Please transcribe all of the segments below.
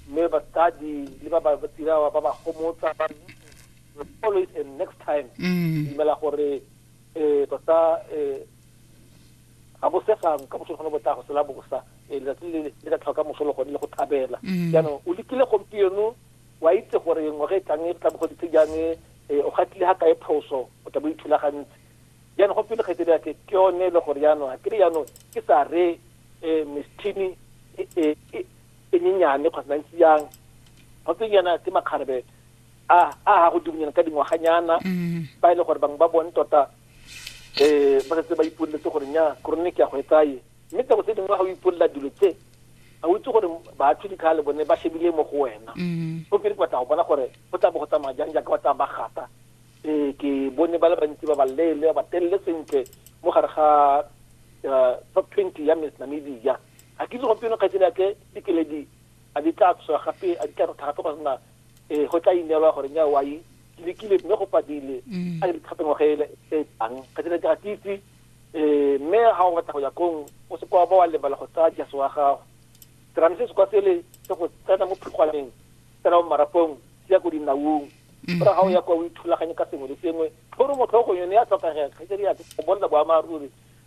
mme batsadi le ba ba tsirawa ba ba gomotsa ba always a next time mm. dumela gore um tota um ga bosegang ka moso gone bo tla go sela bosa um letsatsi le le ka tlhoka moso le gone le go thabela mm. jaanong o lekile gompieno wa itse gore ngwaga e tlang e tla bo goditse jang um o gatile ga kae phoso o tla bo ithulagantse jaanong go pele kgetse ke ke yone le gore jaanong a kere jaanong ke sa re um mistini e, e, e, e nyenyane kgotsa ntsi yang ga tse nyana ke makgarebe a a ga go dumonyana ka dingwaganyana mm-hmm. ba e le gore bangwe ba bone tota um ba setse ba ipoleletse gore nya korone ke ya go e tsaye mme tsako tse dingwe ga o ipolela dilo tse ga o itse gore batho dikgale bone ba shebile mo go wena mm-hmm. go pele ke batla go bona gore go tla bo go tsamaya jang jaaka ba tla ba gata um ke bone ba le bantsi ba ba leele ba telele sentle mo gare ga eh, top twenty ya miss namibia Ga ke itse gompieno kgaitsadi ya ke dikeledi a di tla tswa gape a di tla rotha gape gore na um go tla ineelwa gore nya wa e lekile mme go padile mm. a ke dikgato ngwaga ele e tlang kgaitsadi ya ke ga ke itse um mme ga o batla go ya kong o se kwa ba wa lebala go tsaya jase wa gago serame se se kwa sele se go tsena mo phikgwaneng tsena mo marapong se ya ko dinaung mm. ora ga o ya kwa o ithulaganye ka sengwe le sengwe tlhoro motlhogo yone ya tlhokagega kgaitsadi ya ke go bonela boammaaruri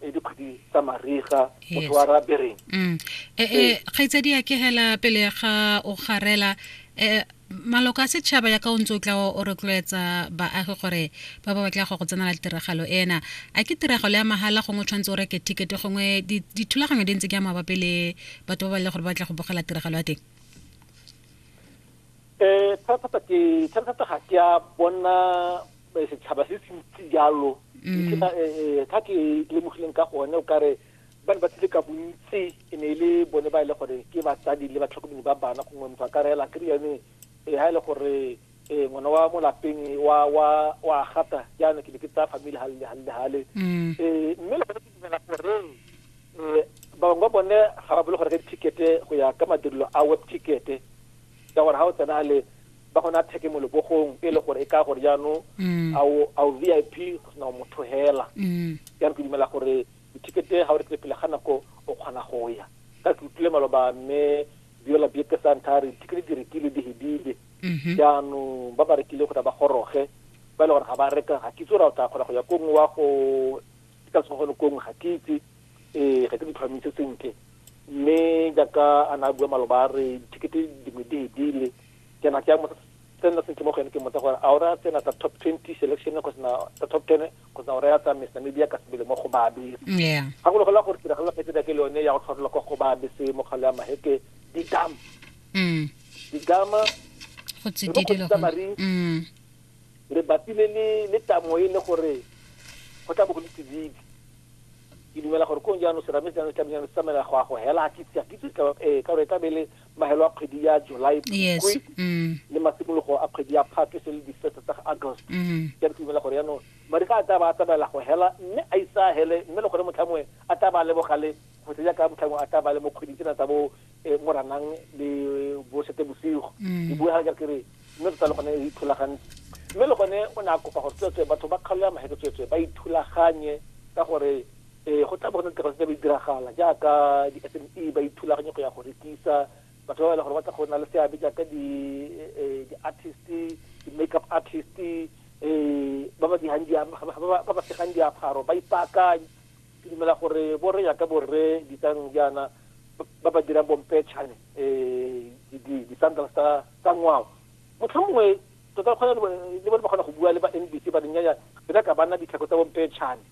e dikgwedi tsa mariga motho wa ra bereng mm. e, e, kgaitsadi ya ke hela pele ga o garela e, maloko a setšhaba ya ka o ntse o tla o rotloetsa baagi gore ba ba batla go go tsenela tiragalo ena a ke tiragalo ya mahala gongwe o tshwanetse o reke ticket-e gongwe dithulaganyo di ntse ke ya mabapi le batho ba ba le gore ba batla go bogela tiragalo ya teng um thata-thata ga ke a bona eh, setšhaba se se ntsi jalo mm. ntlha eh, eh, ke lemogileng ka gone o kare ba ne ba tlile ka bontsi e ne e le bone ba e le gore ke batsadi le batlhokomedi ba bana gongwe motho a ka reela kry yone um ga e le gore um ngwana wa mo lapeng wa gata jaana ke ne ke tsaya famile gale le gale le gale um mme le gone ke dumela gore um ba bangwe ba bone ga ba bole go reka di-tickete go ya ka madirelo a web tickete ka gore ga o tsena le ba go na theke mo lebogong e le gore e ka gore jaanong mm. a o vip go sena motho hela mm. ya re ke dumela gore dithekete ga o rekile pele ga nako o kgona go ya ka ke utlwile maloba mme biola bieke santa re dithekete di rekile di hedile mm-hmm. jaanong ba ba rekile go tla ba goroge ba e le gore ga ba reka ga kitse ra o tla kgona go ya ko nngwe wa go ka tsogone ko nngwe ga ke itse ee ga ke di tlhwamise sentle mme jaaka a na a bua maloba a re dithekete dingwe di hedile ke na ke ya motsa tsena tse ke mo go ene ke motsa gore a o raya tsena tsa top 20 selection kgotsa na tsa top 10 kgotsa o raya tsa Miss Namibia ka sebele mo go babe yeah ga go logola gore tiragalo phetse da ke le yone ya go tlhotlhola kwa go babe se mo kgale ya maheke di dam mm di dama go tsididi le go mm le batile le le tamo e le gore go tla bo go le tsididi ke dumela gore kong jaanong serame jaanong tlamejang se tsamela go a go hela ke tsa ke tsa ka eh, ka gore e tlabele mahelo a kgwedi ya july yes. mm. le masimologo a kgwedi ya phate se le difeto tsa august ke mm. re dumela gore yaanong mariga a taba a tsamaela go hela mme a isa a hele mme le gore motlhangwe a taba a lebogale go se jaaka motlhangwe a taba le mo kgweding tsena tsa bo eh, moranang le bo sete bosigo mm. ke bue ga ke re mme tota le gone e ithulagantse mme le gone o ne a kopa gore tsweetswe batho ba kgaolo ya maheke tsweetswe ba ithulaganye ka gore Ee, go tla bo go na le tiro tse di tlabe di diragala jaaka di-SME ba ithulaganye go ya go rekisa, batho ba ba e leng gore ba tla go nna le seabe jaaka di di-artist, di-makeup artist, ba ba dirang ba ba segang diaparo, ba ipaakanye. Ke dumela gore bo rre jaaka bo rre Ditsang jaana ba ba dirang bompetšhane di-sandals tsa ngwao, motlhomongwe tota le bone ba kgona go bua le ba N_B_C ba re nnyaya re nyaka banna ditlhako tsa bompetšhane.